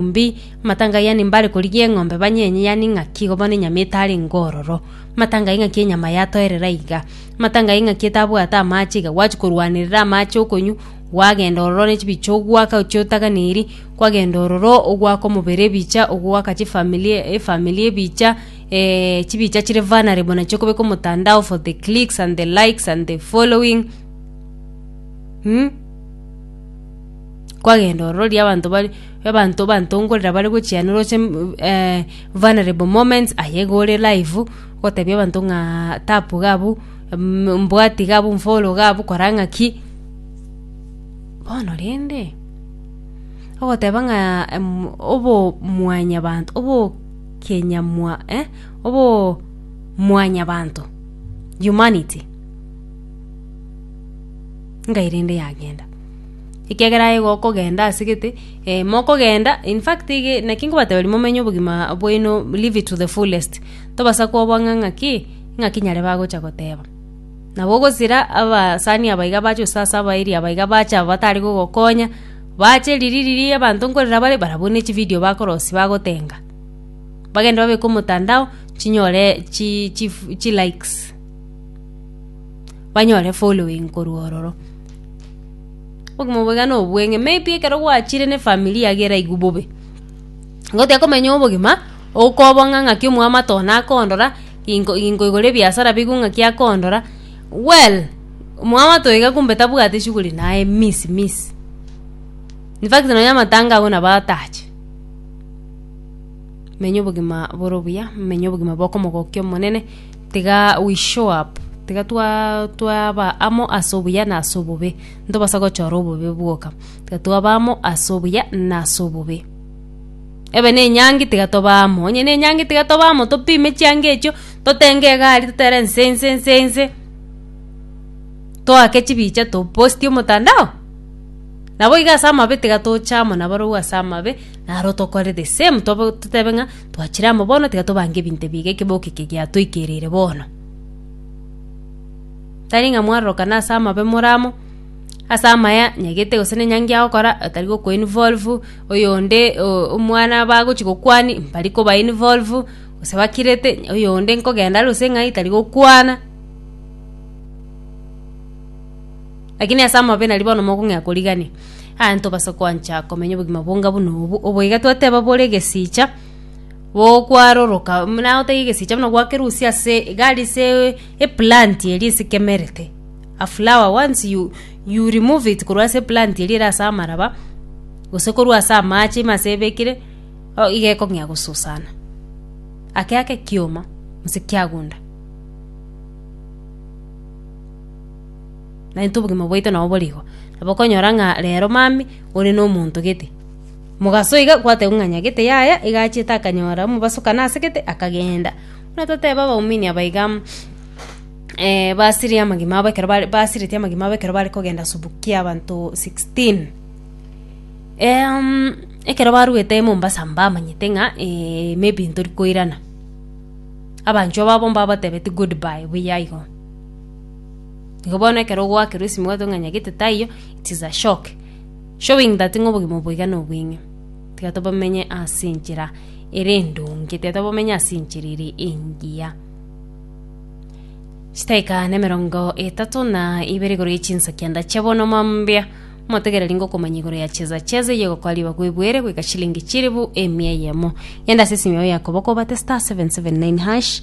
Mbi, matanga yaani mbare korigia eng'ombe banyenye yaani ng'aki igo bono enyama etare ngororo. Matanga ing'aki enyama yatoerera iga. Matanga ing'aki etabwate amache iga gwachi korwanerera amache okonywa gwagenda ororo ne chibicha ogwaka chiotaganeri kwagenda ororo ogwaka omobere ebicha ogwaka chifamiri efamiri ebicha chibicha chire vulnerable nachio okobeka omotandao for the clicks and the likes and the following mmh. kwagenda orororia abanto bare abanto bantongorera bare gochia nere oche mm, eh, vulnerable moments aye iga ore live gotebia abanto ng'aa tap iga abwo mm, mbwati iga abwo mfollow iga abwo kora ng'aki bono rende ogoteba ng'a em obomwanyabanto obokenyamwa eh, obomwanyabanto, humanity, ngai rende yagenda. ekiagera aye igo okogenda ase gete, eh, mokogenda, in fact ige naki nkobateberia momenye obogima bwaino live it to the fullest, tobasa koba ng'a ng'aki, ng'aki nyare bagocha goteba. Nabo ogosira abasani aba iga bacha gose ase abairi aba iga bacha batari gogokonya, bache riria riria abanto nkorera bare, barabwo ne chividio bakorosia bagotenga, bagende babeke omotandao chinyore chi chifu chilikes, banyore following korwa ororo. Obogima obo iga nobweng'e, maybe ekero gwachire na efamiri yago eraigwe bobe, nigo otekomenya obogima, okoba ng'a ng'aki omwamato one akondora, ingo ingoigora ebiasara bigwe ng'aki akondora, well omwamato iga kumbe tabwati shughuli naye miss miss, infact nonya amatanga agwo nabo atache. Menya obogima bore obuya, menya obogima bwa okomogokia Omonene. Tiga we show up, tiga twaba amo ase obuya na ase obobe, ntobasa gochora obobe bwoka, tiga twaba amo ase obuya na ase obobe. Ebe na enyangi tiga tobe amo, onye na enyangi tiga tobe amo, topime chianga echio, totenge egari totere nse nse nse nse, toake chibicha topostie omotandao, nabo iga ase amabe tiga toche amo nabarobwo ase amabe, naro tokore the same tobe totebe ng'a. Twachire amo bono, tiga tobange ebinto ebiga ekeboko eke giatoikereire bono. Tari ng'a mwarorokana ase amabe more amo, ase amaya nyagete gose nenyangi ya gokora otari gokoinvolve oyonde o- omwana bagochi gokwani mbari kobainvolve, gose bakirete oyonde nkogenda arose ng'ai tari gokwana. Lakini ase amabe nari bono mokong'ea korigania, aa tobasa koancha komenya obogima bonga buna obu, obo iga twateba bore egesiicha bokwaroroka, buna otaiga egesiicha buna gwakerusia ase iga ari ase eplant eria esikemerete, a flower once you you remove it korwa ase eplant eria ere ase amaraba, gose korwa ase amache ime ase ebekire, o iga ekong'ea gosusana, ake ake ekioma gose kiagunda. naintwe obogima bwaito nabo bore igo. Nabo okonyora ng'a rero mami ore na omonto gete, mogaso iga gwatebiwa ng'a nyagete yaya iga achete akanyora omobaso kane ase gete akagenda. Buna totebe abaumini aba iga basirie amagima abo ekero bare basireti amagima abo ekero bare kogenda subuki kia abanto sixteen ekero baruete Mombasa mbamanyete ng'a maybe ntori koirana, abanchwa babo mbabatebetie goodbye buya igo. Igo bono ekero ogwakerwa esimi obwate ng'a nyagete taiyo, it is a shock showing that ng'a obogima obo boiga nobweng'e. Tiga tobomenye ase enchera ere endonge, tiga tobomenye ase enchera ere engiya. Chidaeka na emerongo etato na ibere igoro ya chinsa kianda chia bono mambia, motegereri ngokomanya igoro ya cheza cheza eye egokora riba gwebuere goika chilingi chilifu emia eyemo. Genda ase esimi yao ya koboko obate *779#.